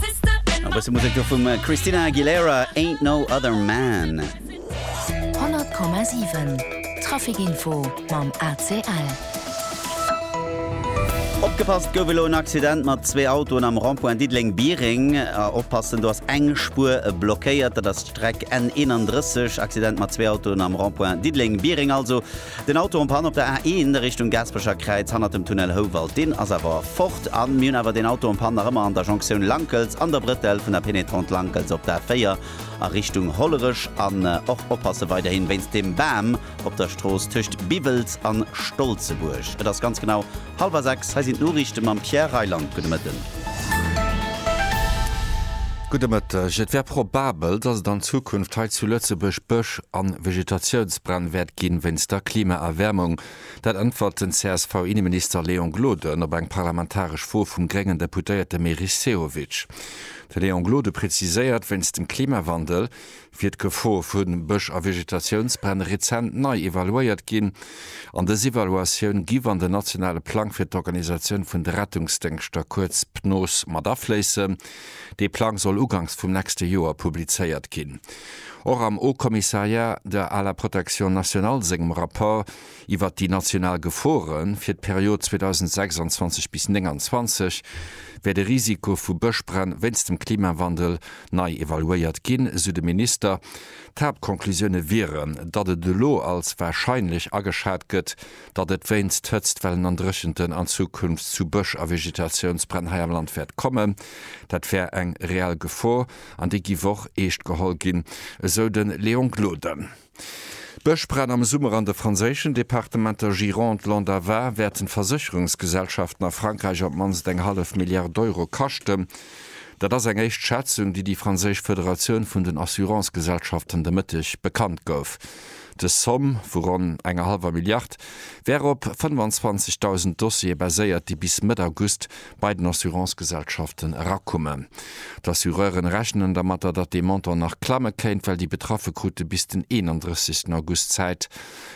E bësse Musek do vum Christina Aguilera, Ain't No Other Man. 100,7 Traficinfo mam ACL. Opgepasst gouf elo en Accident mat zwee Autoen am Rond-point Diddeleng-Biereng. Oppassen, do ass eng Spuer blockéiert, dat ass d'Streck N31. Accident mat zwee Autoen am Rond-point Diddeleng-Biereng also. Den Auto en panne op der A1 Richtung Gaasperecher Kräiz hannert dem Tunnel Houwald. Deen ass awer fort an mir hunn awer deen Auto en panne nach ëmmer an der Jonktioun Lankels an der Brëtell vun der Pénétrante Lankels op d'A4 a Richtung Hollerech. An och oppasse weiderhin wéinst dem Bam op der Strooss tëscht Biwels an Stolzebuerg. Et ass ganz genau. Halwer 6, hei sinn d'Noriichte mam Pierre Reyland. Gudde Mëtten. Gudde Mëtteg. Et wär probabel, datt et an Zukunft hei zu Lëtzebuerg Bësch a Vegetatiounsbränn wäert ginn, wéinst der Klimaerwäermung. Dat äntwert den CSV-Inneminister Léon Gloden op eng parlamentaresch Fro vum gréngen Deputéierte Meris Sehovic. De Léon Gloden präziséiert, wéinst dem Klimawandel Fir d'Gefor vu Bësch a Vegetatiounsbränn rezent nei evaluéiert ginn an dës Evaluatioun giff an den nationale Plang fir d'Organisatioun vun de Rettungsdéngschter, kuerz PNOS, mat afléissen. Dee Plang soll ugangs vum nächste Joer publizéiert ginn. Och am Haut-Commissariat à la protection nationale sengem Rapport, iwwert déi national Gefore fir d'Period 2026 bis 2029 wäert e Risiko vu Bëschbränn wéinst dem Klimawandel nei evaluéiert ginn, esou de Minister. D'Haaptconclusioune wieren, datt et elo als warscheinlech ageschat gëtt, datt et wéinst Hëtztwellen an Dréchenten an Zukunft zu Bësch a Vegetatiounsbränn hei am Land wäert kommen. Dat wär eng reell Gefor an déi giff och eescht geholl ginn, esou de Léon Gloden. D'Bëschbränn am Summer an de franséischen Departementer Gironde, Land a Var wäerten d'Versécherungsgesellschaften a Frankräich op d'mannst eng hallef Milliard Euro kaschten. Dat ass eng éischt Schätzung, déi déi franséisch Federatioun vun den Assurancegesellschaften de Mëtteg bekannt gouf. Dës Zomm vu ronn enger hallwer Milliard wär op 25.000 Dossiere baséiert, déi bis Mëtt August bei den Assurancegesellschaften erakommen. D'Assureuren rechnen dermatter, datt dee Montant nach klamme kéint, well déi Betraffe krute bis den 31 August Zäit,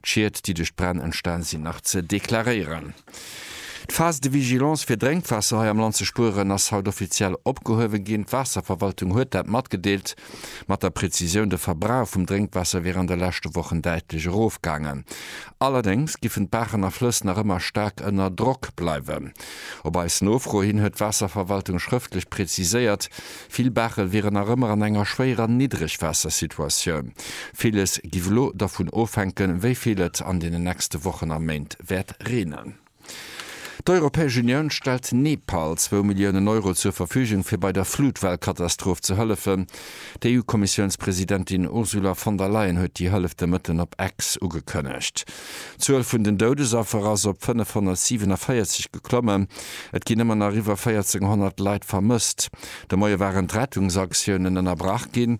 d'Schied, déi duerch d'Bränn entstan sinn, nach ze deklaréieren. D'Phase de vigilance fir Drénkwaasser hei am Land ze spueren ass haut offiziell opgehuewe ginn. D'Waasserverwaltung huet dat matgedeelt. Mat der Prezisioun, De Verbrauch vum Drénkwaasser wier an de leschte Wochen däitlech erofgaangen. Allerdéngs giffen d'Baachen a Flëss nach ëmmer staark ënner Drock bleiwen. Op eis Nofro hin huet d'Waasserverwaltung schrëftlech preziséiert, vill Baache wieren nach ëmmer an enger schwéierer Niddregwaassersituatioun. Villes giff elo dervun ofhänken, wéi vill et an deenen nächste Wochen a Méint wäert reenen. D'Europäesch Unioun stellt Nepal zwou Milliounen Euro zur Verfügung, fir bei der Flutwellkatastroph ze hëllefen. D'EU-Kommissiounspresidentin Ursula von der Leyen huet déi Hëllef de Mëtten op X ugekënnegt. D'Zuel vun den Doudesaffer ass op 547 geklommen. Et ginn ëmmer nach iwwer 1400 Leit vermësst. De Moie waren d'Rettungsaktiounen ënnerbrach ginn.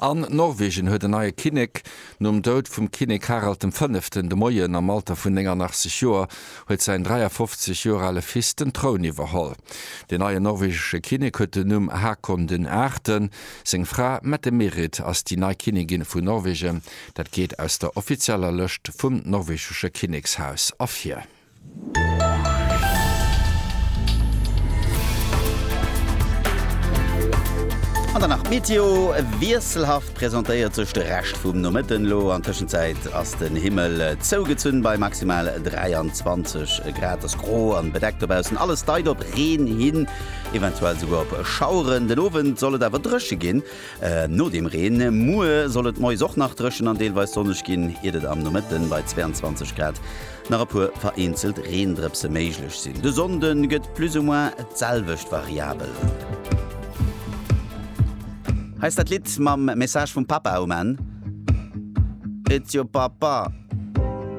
An Norwegen huet en neie Kinnek. Nom Doud vum Kinnek Harald dem Fënneften de Moien am Alter vun 89 Joer huet säin 53 Joer ale Fils den Troun iwwerholl. Den neien norwegesche Kinnek huet den Numm Hakon den Aachten. Seng Fra Mette-Merit ass déi nei Kinnigin vun Norwegen. Dat geet aus der offizieller Lëscht vum norwegesche Kinnekshaus ervir. An dann nach d'Meteo, wiesselhaft presentéiert sech de Rescht vum Nomëtten elo. An Tëschenzäit ass den Himmel zougezunn bei maximal 23 Grad. Ass gro an bedeckt dobaussen, alles deit op Reen hin, eventuell souguer op Schaueren. Den Owend soll et awer drëche ginn no dem Reen. Muer soll et moies och nach drëchen an deelweis sonneg ginn, iert et am Nomëtten bei 22 Grad nach e puer vereenzelt Reendrëpse méiglech sinn. De Sonnde gëtt plus ou moins d'selwecht variabel. Hei ass dat Lidd mam Message vum Papa um Enn. It's your Papa.